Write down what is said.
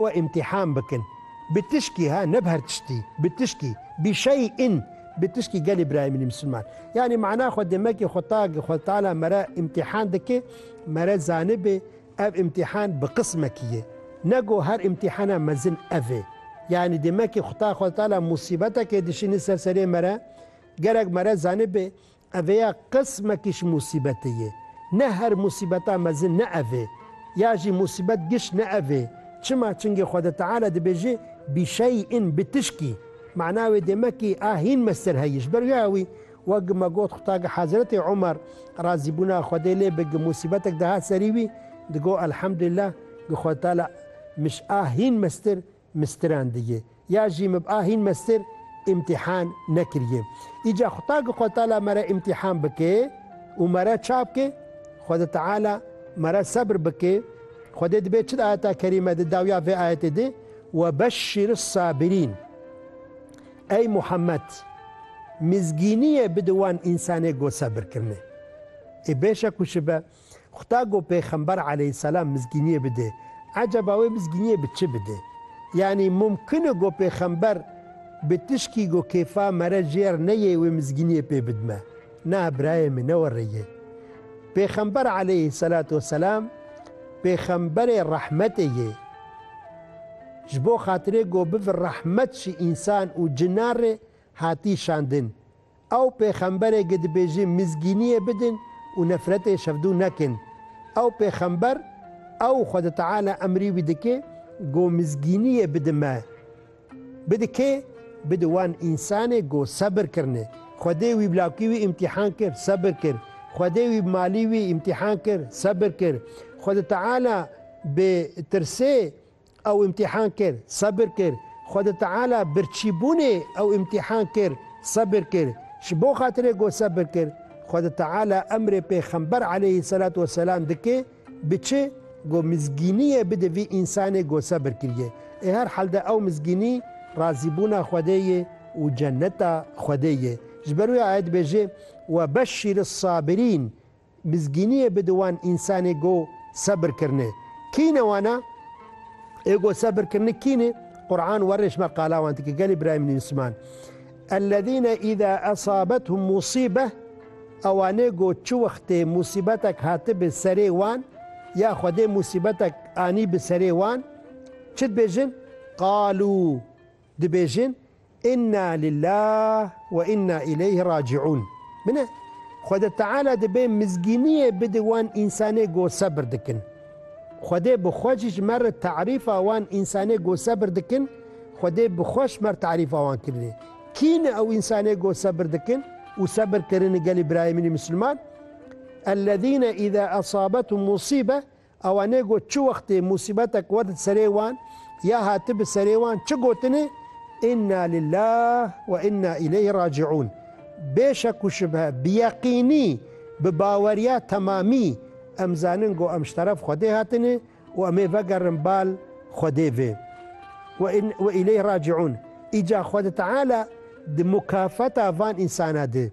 û îmtîhan bikin bi tişkî ha ne bi her tiştî bi tişkî bi şey in bi tişkî gelê birayê min ê misilman yanî mana xwe demekî xwe ta xwe tala me re îmtîhan dike me re zanibê ev îmtîhan bi qismekî ye ne go her îmtîhana mezin ev ê yanî demekî xwe ta xwe tala musîbetekê dişînî ser serê me re gerek me re zanibê Ev ya qismekî ji musîbetê ye. Ne her musîbeta mezin ne ev ê. Ya jî musîbet giş ne ev ê. Çima? Çingê Xweda Teala dibêje, Bişeyin, bi tişkî. Mana wê dê me kî a hîn me ser heye. Ji ber vê awî, wek me got Xwetagi Hezretê Omer, razîbûna Xwedê lê be, gi musîbetek dihat serî wî, digot, Elhamdulillah, gi Xweda Teala, mij a hîn mestir, Mistiran diye. Ya jî mib a hîn mestir îmtîhan nekiriye. Îca Xuda gi xwe tala mere îmtîhan bike û mere çap ke, Xwede Teala mere sebr bike. Xwedê dibe çi di ayeta kerîme di dawiya vê ayetê de, Ve beşşîris sabirîn. Ey Muhammed! Mizgîniyê bidi wan însanê ku sebir kirine. Ê bêşek û şibe Xuda got pêxember aleyhîsselam mizgîniyê bide. Eceba wê mizgîniyê bi çi bide? Yanî mumkin e got pêxember bi tişkî got kêfa mere jêr neyê wê mizgîniyê pê bidime? Na birayê min ne were ye. Pêxember aleyhîsselatu weselam pêxemberê rehmetê yê. Ji bo xatirê got bivir rehmet ji însan û cinan rê hatî şandin. Ew pêxemberê ge dibêjê mizgîniyê bidin û nefretê şevdû nekin. Ew pêxember ew Xweda Teala emrî wî dike go mizgîniyê bidi me. Bidi kê? Bidi wan însanê go sebir kirine. Xwedê wî bi lakî wî îmtîhan kir, sebir kir. Xwedê wî bi malî wî îmtîhan kir, sebir kir. Xweda Teala bi tirsê ew îmtîhan kir, sebir kir. Xwedê Teala birçîbûnê ew îmtîhan kir, sebir kir. Ji bo xatirê ku sebir kir, Xwedê Teala emrê pêxember aleyhî selat we selam dike, biçi ku mizgîniyê bide vî însanê ku sebir kiriye. Ê her helde ew mizgînî razîbûna Xwedê ye û cenneta Xwedê ye. Ji ber wê ayet dibêje, Webeşşîris sabirîn, Mizgîniyê bi di wan însanê go sebir kirine. Kî ne wana? Ê go sebir kirine kî ne? Quran werêş me qala wan dike gelê birayê min însiman. Ellezîne îza esabethum musîbeh ewanê go çi wextê musîbetek hatibe serê wan ya Xwedê musîbetek anî bi serê wan çi dibêjin? Qalû Dibêjin Inna lillah we inna ileyh raciun. Min e. Xwede Teala dibe mizgîniyê bide wan însanê go sebir dikin. Xwedê bi xwe jî ji me re terîfa wan însanê go sebir dikin, Xwedê bi xwe ji me re terîfa wan kirine. Kî ne ew însanê go sebir dikin û sebir kirine gelê birayê min ê misilman? Ellezîne îzâ esâbethum musîbe Awanê got çi wextê musîbetek wet di serê wan ya hati bi serê wan çi gotinê, Inna lillah we inna îleyhi racîûn. Bê şek û şibhe, bi yeqînî, bi baweriya temamî em zanin go em ji teref Xwedê hatine û em ê vegerin bal Xwedê vê. We inna we îleyhi racîûn. Îca Xwedi Teala di mukafeta van însana di.